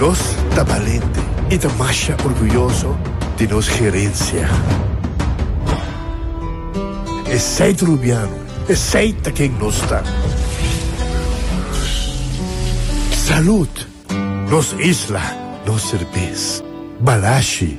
Nos ta balente i ta masha orguyoso di nos gerensia. Esei ta Rubiano, esei ta ken nos ta. Salud! Nos isla, nos serbes. Balashi!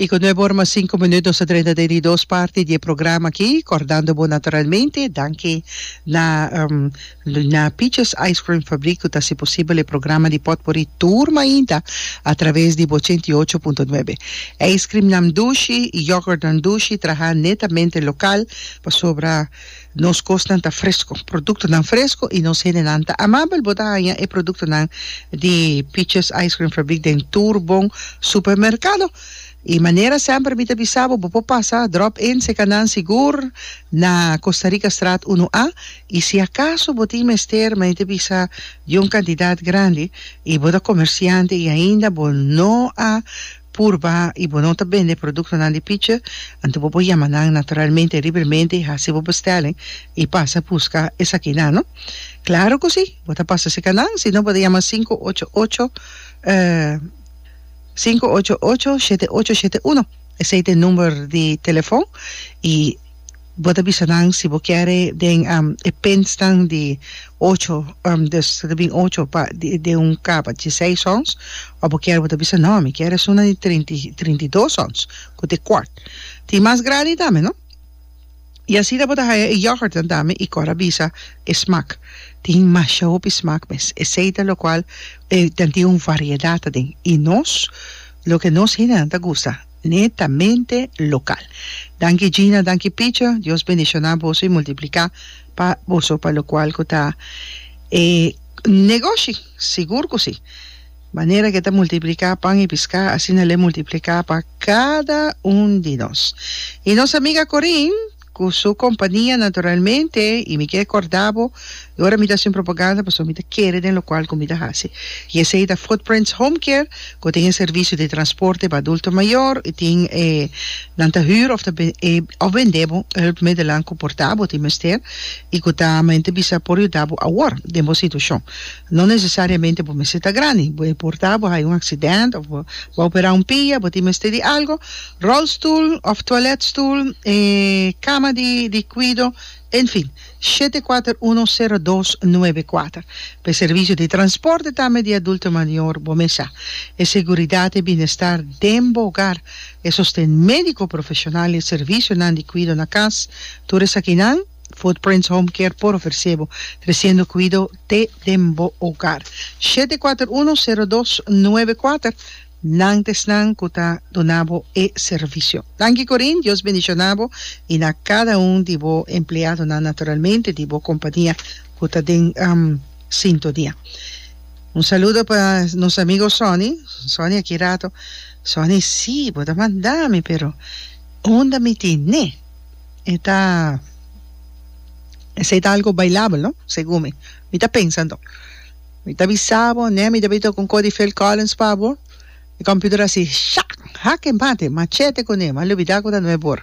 Y cu nuebe ora mas cinco minuut nos a drenta den di dos parti di e programa aki, cordando bo naturalmente, danki na na Peaches Ice Cream Fabriek cu ta haci posibel e programa di Pot Por i tur mainta a traves di ochenta y ocho punto nuebe. Ijscreamnan dushi y yoghurtnan dushi traha netamente local pasobra. Nos kosnan ta fresko, produktonan fresko i nos hendenan ta amabel. Bo ta haña e produktonan di Peaches Ice Cream Fabrik den tur bon supermerkado. I manera semper mi ta bisa bo, bo por pasa drop in Sekanan Sigur na Costa Rica Straat Uno A. I si akaso bo tin mester, mi ta bisa, di un kantidat grandi i bo ta komersiante i ainda bo no a purba y bo no ta bende productonan di pichi, anto bo por yama nan naturalmente y libremente y haci bo bestelling y pasa busca esaki nan, no? Claro cu si, bo ta pasa cerca nan, si no bo ta yama sinku ocho ocho, sinku ocho ocho, shete ocho shete uno, esey ta e number di telefon y. bo ta bisa nan si bo kier e den e pintsnan di ocho, dus ta bin ocho pa den un kaba di seis ons, of bo kier bo ta bisa no mi kier esunnan di trinta i trinta i dos ons ku ta e kwart. Tin mas grandi tambe no. I asina bo ta haya e yògùrtnan tambe i kor a bisa e smak tin masha hopi smak mes esei ta lokual e tin un variedat aden i nos loke nos hendenan ta gusta. Netamente local. Danki Gina, danki Picho, Dios bendiciona boso y multiplica pa boso pa locual cu ta e negoshi, sigur cu si. Manera que ta multiplica pan y pisca asina le multiplica pa cada un di nos. Y nos amiga Corin. cu su compania naturalmente y mi ke corda bo y ora mi ta haci un propaganda pasobra mi ta kere den locual cu mi ta haci y esey ta Footprints Home Care cu tin e servicio di transporte pa adulto mayor y tin e nan ta huur of ta of bende bo hulpmiddelan cu por ta bo tin mester y cu ta mente bisa por yuda bo awor den bo situacion no necesariamente bo mester ta grandi bo e por ta bo hayo un accidente of bo a opera un pia bo tin mester di algo Rolstoel of toiletstoel e cama di di cuido en fin shete kuater uno sero dos nuebe kuater pe servicio di transporte tambe di adulto mayor bo mes sa e seguridad e bienestar den bo hogar e sosten medico profesional e servicionan di cuido na cas tur esakinan Footprints Home Care por ofrece bo treciendo cuido te den bo hogar shete kuater uno sero dos nuebe kuater. Nan ta esnan cu ta duna bo e servicio. Danki Corine, Dios bendiciona bo y na cada un di bo empleadonan, naturalmente di bo compania cu ta den sintonia. Un saludo pa nos amigo Sonny, Sonny aki rato, Sonny si bo ta manda mi pero unda mi tin ne? E ta esey ta algo bailable no? Segun mi, mi ta pensa anto. Mi ta bisa bo, ne mi tabata con Cody Phil Collins pa bo. E computer a si shak, hake, mate, machete cu ne, ma lo bida cu ta nueb por.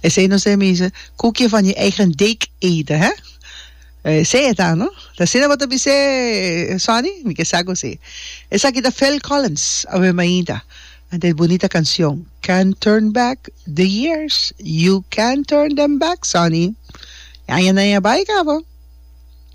Esey no se misa koekje van je eigen deeg eten, hè? Esey eta, no? Ta asina bo ta bis'é, Sonny? Mi ke sa cu si. Esaki ta Phil Collins, awe mainta. Ante e bunita cancion, Can't Turn Back the Years, You Can't Turn Them Back, Sonny. E añanan a bai cabo.